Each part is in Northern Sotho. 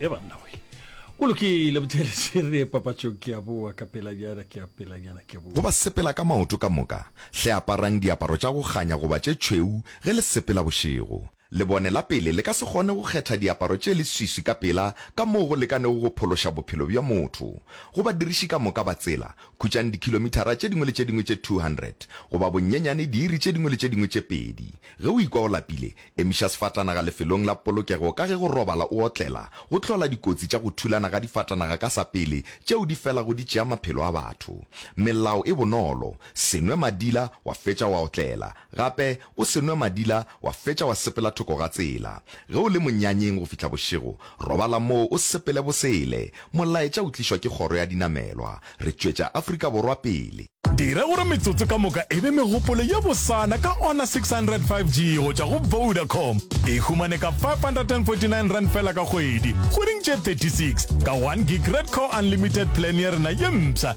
e banna we o lokile bothelese re papatšong ke a boa ka pelanyana ke a pelanyana ke boa go ba sepela ka maoto ka moka hle aparang diaparo tša go kganya goba tše tšhweu ge le sepela bošego Lebone la pele le ka se kgone go kgetha diaparo tše leswiswi ka pela ka moo go lekanego go phološa bophelo bja motho. Go badiriši ka moka ba tsela, khutšang dikhilomithara tše dingwe le tše dingwe tše 200, goba bonyenyane diiri tše dingwe le tše dingwe tše pedi. Ge o ikwa o lapile, emiša sefatanaga lefelong la polokego ka ge go robala o otlela go hlola dikotsi tša go thulana ga difatanaga ka sa pele tšeo di felago di tšea maphelo a batho. Melao e bonolo, Se nwe madila wa fetša wa otlela. Gape o se nwe madila wa fetša wa sepela thoko ga tsela. Ge o le monyanyeng go fihla bošego, robala moo o sepele bosele. Molaetša o tlišwa ke kgoro ya dinamelwa. Re tšwetša Afrika Borwa pele. Dira gore metsotso ka moka e be megopolo ye bosana ka Honor 600 5G go tšwa go Vodacom. E humane ka R549 fela ka kgwedi, kgweding tše 36, ka one gig Red Core Unlimited Plan ya rena ye mpsha.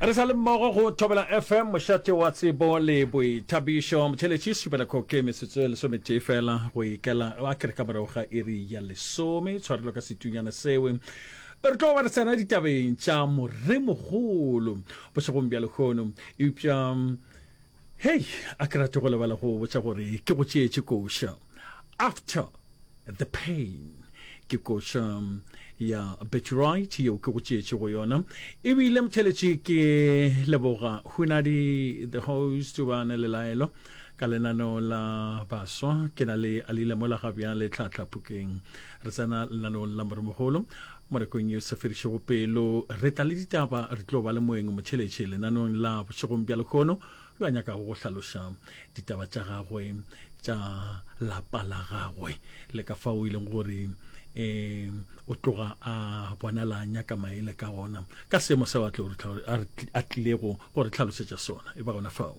Re sa le mmogo go Thobela FM, mošate wa tsebo le boithabišo. Motheletši Supelakho ke metsotso e lesometee fela go ikela a kere ka morago ga iri ya lesome. Tshwarelo ka setunyana seo re tlo ba re tsena ditabeng tša moremogolo bošegong bja lehono eupša Hei, a ke rate go lebala go botša gore ke go tšeetše koša. After the pain. Ke koša ya Beturight yeo ke go tšeetšego yona. Ebile motheletši ke leboga Hunadi the host ba ne lelaelo ka lenaneo la baswa. Ke na le Alile mola ga bjale tlhatlha phokeng. Re tsena lenaneong la Moremogolo. Mo rekong ye sa fedišego pelo, re tla le ditaba, re tlo ba le moeng motšheletše lenaneong la Bošegong bja Lehono yo a nyakago go hlaloša ditaba tša gagwe, tša lapa la gagwe le ka fao e leng gore e, o tloga a bonala nyaka maele ka gona ka seemo seo a, tlo, a tlilego go re tlhalosetša sona. E ba gona fao.